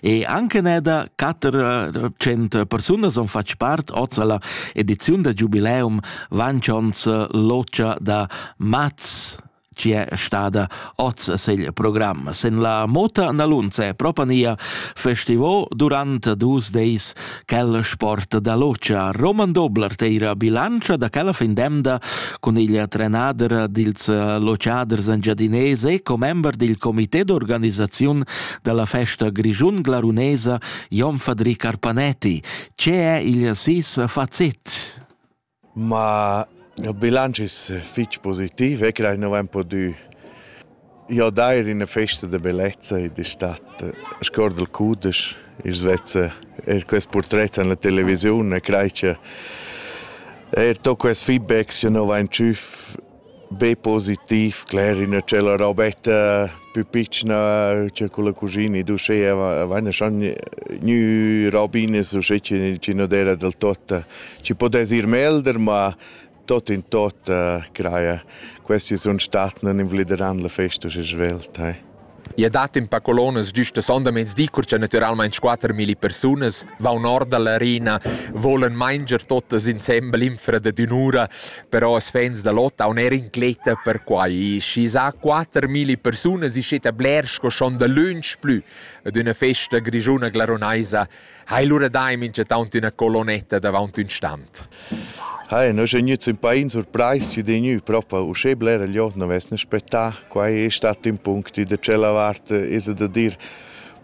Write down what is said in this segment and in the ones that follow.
E anche ne da 400 persunas on fatg part oz alla ediziun da Jubileum Vancions Locia da Maz ci è stata oz segl program. Sen la Mota Nalunze propania festivo durant dus deis Quella sporta da lotscha Roman Dobler teira bilantscha da quella fin demda cun igl trenader dils lotschaders engiadinés e commember dil comité d'organisaziun dalla festa grischun glarunesa Jon Fadri Carpanetti. Ce è igl sis facit? Ma il bilanc es fich positiv e creai nu vain pudü jodair in üna festa da bellezza e d'estate. Scuord il cudesch, i's vezza eir quest purtret in la televisiun e crai cha eir to quest feedbacks chi nu vain tschüf Be positiv, cler, üna tschella robetta pü pitschna cha culla cuschina d'uschea vaina schon gnü robinas uschè chi nu d'eira del tot, chi pudess ir melder, ma tot in tot craja, questi sun stat, nun invalideran la festa uschè svelt, eh. I dat in pa colonas gist a sondamezdi, cur cha natüralmaing quatter milli persunas vaun or da l'arena, volan manger totas insembel infra dad ün'ura, però as fans da lot haun eir incletta per quai. Schi s'ha quatter milli persunas, iscetta bler sco schon dalöntsch plü ad üna festa grischuna glarunaisa Hai lura dai minchatant üna colonnetta davaunt ün stand. Hai, no sun gnüts ün pain surprais chi d'he gnü propa uschè blera jod non vessna spettà. Quai es stat ün punct ü da tschella vart, esa da dir,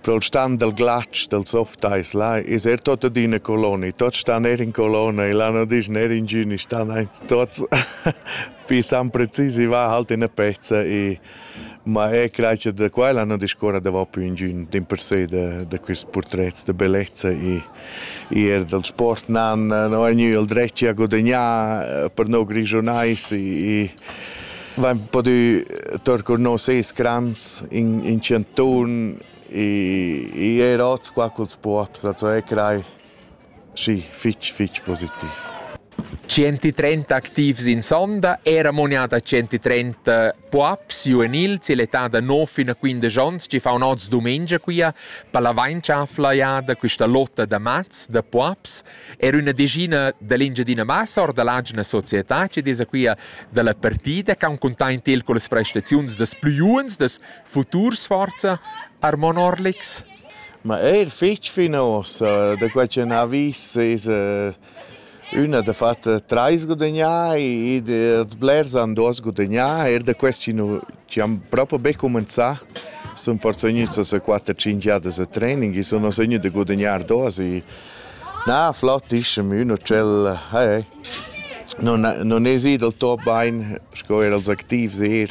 pro'l stand dal glatsch, dal softais, là es er tot adüna colonna, tots stan eir in colonna e là non dischna eir ingün, i stan aint tots. Pi sam precis i va halt üna pezza e Ma er gleich da quel han discuorra davò pü ingün dimpersè da da quists purtrets da bellezza e eir dal sport nan no ha gnü il dret a gudagnar per no grischunais e vain podü tour cun nos ses grands in in chantun e eir hoz qua culs puobs, also eir crai. Sì, fitg, fitg positiv. 130 activs in sonda, era monada 130 puaps juvenil, si l'età da 9 fino a 15 onns, ci fa un oz domenica quia, per la vainchaflaiada, questa lotta da mats, da puaps, era una decina dell'Engiadina Massa, or dall'agina società, ci desa quia dalla partida, che han containt il con le prestazioni des più giovens, des futurs forza, Armon Orlix. Ma eir fich fino uossa da quai cha n'ha vis esa üna dafatt trais gudagnà ed els blers han duos gudagnà. Eir da quest chi nu chi han propo be cumanzà sun forsa gnüts a sa quatter tschinch jadas a training i sun uossa gnü da gudagnar duos e na flott ischem ün utschel eh nun nun es i dal top bain sco eir als activs eir.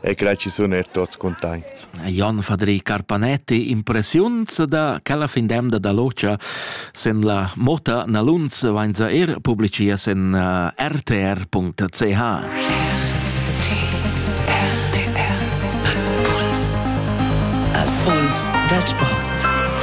e quella ci sun er tuots cuntaints. Jon Fadri Carpanetti, impressiuns da quella fin d'emda da locha sen la Mota Naluns vainza er publicia sen uh, rtr.ch. Puls dal sport.